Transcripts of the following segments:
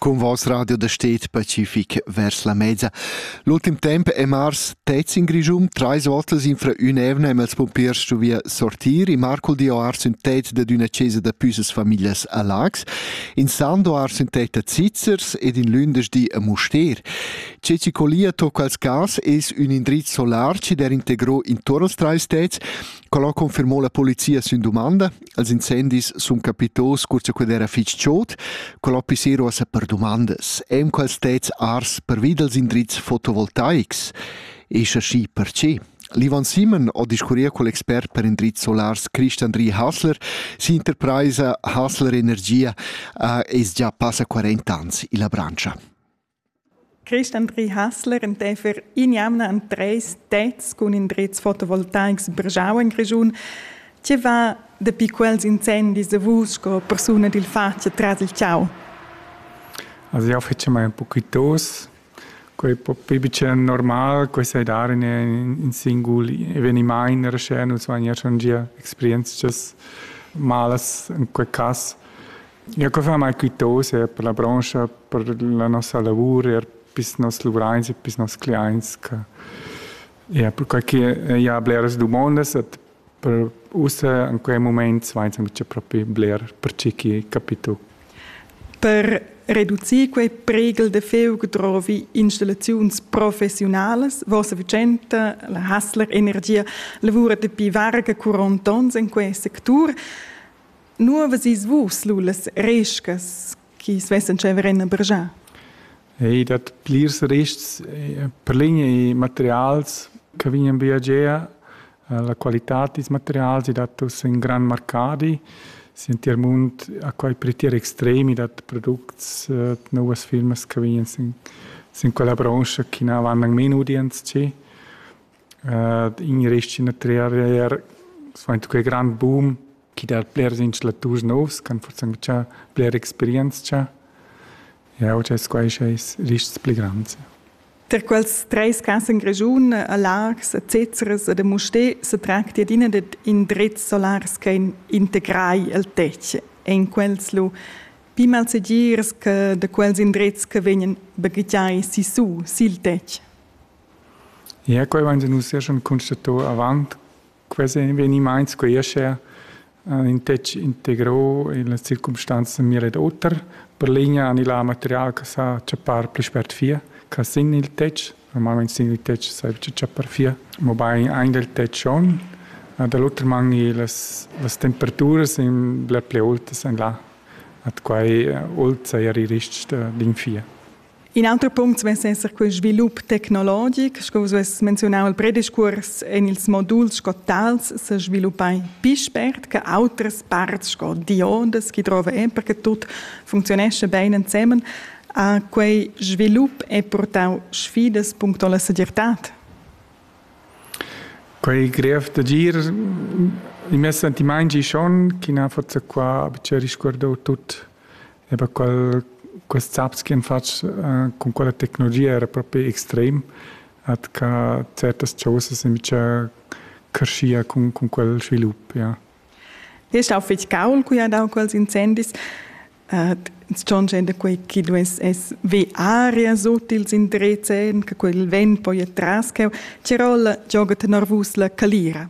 Con vos radio da stet pacific vers la mezza. L'ultim temp è mars tez in Grischum, trais volte in fra un'evna e els pompiers stu via sortir, e Marco dio ar sün tet da d'una cesa da püsas famiglias a Lax, in Sando ar sün tet a Zizzers ed in lündeschdi a Muster. Ce ci colia tocca als gas es un indriz solar ci der integro in torres trais tets, collo confirmò la polizia sün domanda, Els incendis sun capitos cur cha quel era fich chod, col hò pissero a sa per dumandas, e'm quals tets ars pervi dals indrizs fotovoltaics, e scha schi, perche? L'Ivan Simon ho discurria col expert per indrizs solars Christian Rie Hasler. S'interpraisa Hasler Energia uh, es già passa 40 ans illa branscha. Christandri Hassler enteifer in'jamna en treis tets cun indrezs fotovoltaics brgau en Grischun. Tge va dapi quels incendis a vus sco persuna dil fatg tras il tgau? Also io fece mai un poquitos, quei po pli bicen normal, quei sai dar in, in singul eveniment era sche nus vagn er schon gia experientschas malas in quei cass. Ja, co far mai quitose per la brancha, per la nossa lavur, er pis nos luvrains e pis nos cliaints, che ja, perquai che ja bleras dumondas et per ussa in quei moment vains aunc propi bler per tgi chi capito. Per reducir quei pregel de feug drovi installaziuns professionalas. Vossa Vicenta, la Hassler Energia, lavura dapi varga 40 ons in quei sectur. Nu avessis vus lu las rescas chi svessan tscheiver en a Bergin? Ei dat plirs rests per linea e materials che vegnan via gia. La qualitad dils materials ei dat uss in gran marcadi. Si en tier mund ha quei per tier extremi dat products novas firmas che vegnan sin, sin quella branscha che na van anc meno udients che. In rest in triar, svain quei grand boom chi dat blers instalaturs novs ch'han forsanzchà bler experientscha. Jau dess quai schais rists pli grands. Tar quels treis cas en Grischun, a Laax, a Zezeres ed a Mustér sa tracti adina dad indrezs solars che integrai il tetg. En quels lu pli malsegirs che da quels indrezs che vegnan baghegiai sissu sil tetg. Ja, quai vain nus er schon constato avant Quels evenimaints creescha ün tec integro illas circumstanzas mira ed oter. Per ligna han illa material che sa chappar pli spert fia che sin il tetg. Normalmaing sin il tetg s'aiva chappar fia, mobain aint del tetg schon. Da l'oter man las las temperaturas sun bler plü autas en là. Ad quai old saja il rist d'infia. In auter punct vess esser quel svilup tecnologic, sco vus vess menziunau il prediscurs en ils moduls sco tals se sviluppai pi spert che autres parts sco diodas chi drova e perché tut funzionesce bene ensemen, a quei svilup è portau sfidas puncto la segirtad. Quei grev d'agir i mes sentimaint schon, chi na forza qua, che risguardau tut e per qual quest zaps che fatg uh, con quella tecnologia era proprio extrem at ca certas cosas invece crescia con, con quel svilup ja. Ist auch fitg gaul, qui hat auch quels incendis. Uh, schon da quei chi dues es ve aria sut ils indrezzen, che quel vent poi tras che Tirola gioga tener vus la calira.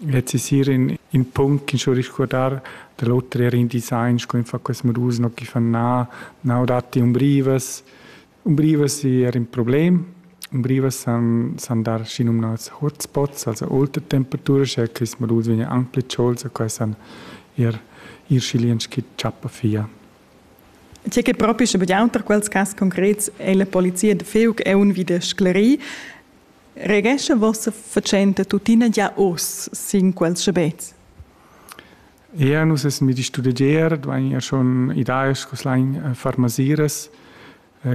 Lez es eir in in punct chi cho risguardar da l'oter eir in design sco in fa quels modus no chi fan na na o datti umbrivas. Umbrivas es eir ün problem. Umbrivas san san dar schinumnats hotspots, also aulta temperatura, sche quist modus vegna anc plü tscholts e quai san eir ir schilients chi tschappa via. Tge che propi sche be auter quels cas concrets è la polizia da Feug è un vi da sclerir. Regescha vossa fatschenta tuttina gia oz sin quels schabets? Eir nus essan vid studegier, duain ir schon idaes cus lain farmasiras,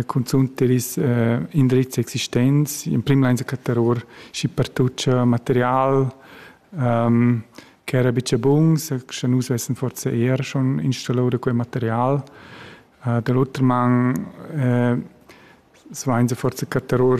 cunzunt der is indrizs existents, in prim lain cattar our schi pertut cha material ch'era bicha buns, scha nus vessan forsa eir schon installau da quel material. da l'oter man svainsa forsa cattar our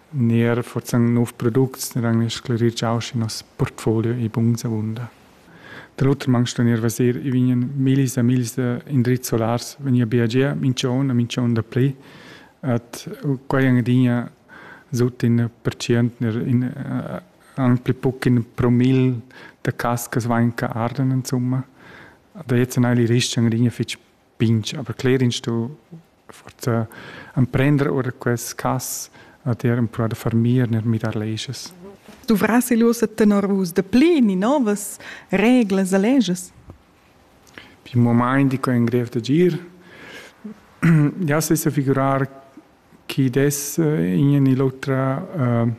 Ner forzan nov products ner han sclerir giau schi nos portfolio ei buns avunda. Dall'oter mangst ner vaser, i vegnan millis e millis indrizs solars vegni a biagiar minch'on e minch'on dapli. Ed quai han adina sut in percient ner in anc pli buc in promil da cascas vain che arden insumma. Da jetzt ennà il rist han adina fich pinch, aber cler inst du forza emprender ora quest cas ad er empruar da far mir ner mirar leges. Duvras il ussa tenor vus de pli ni novas reglas e leges? Pi moment dico in grev de gir. Ja se sa figurar chi des eh, in e l'otra uh,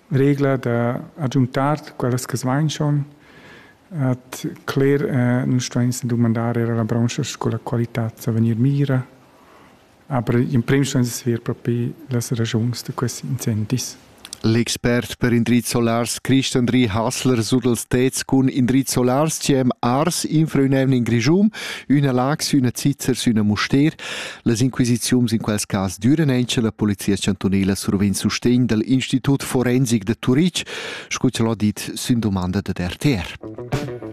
regla da agiuntar quellas che svainchan at cler eh, nun stains dumandar er alla brancha sco la qualità sa vegnir mira aber in prim stains sver propi las ragiuns da questi incentis L'expert per indrizs solars Christian Ri Hassler sur dels tets cun indrizs solars ci hem ars infra ün emn in Grischum, üna lax, üna zizzer sü üna Muster Las inquisiziuns in quels cas düran eir sche la polizia chantunela survegn sustegn dal Institut forensic da Turitg, scu ch'el ha dit sün dumanda dad RTR.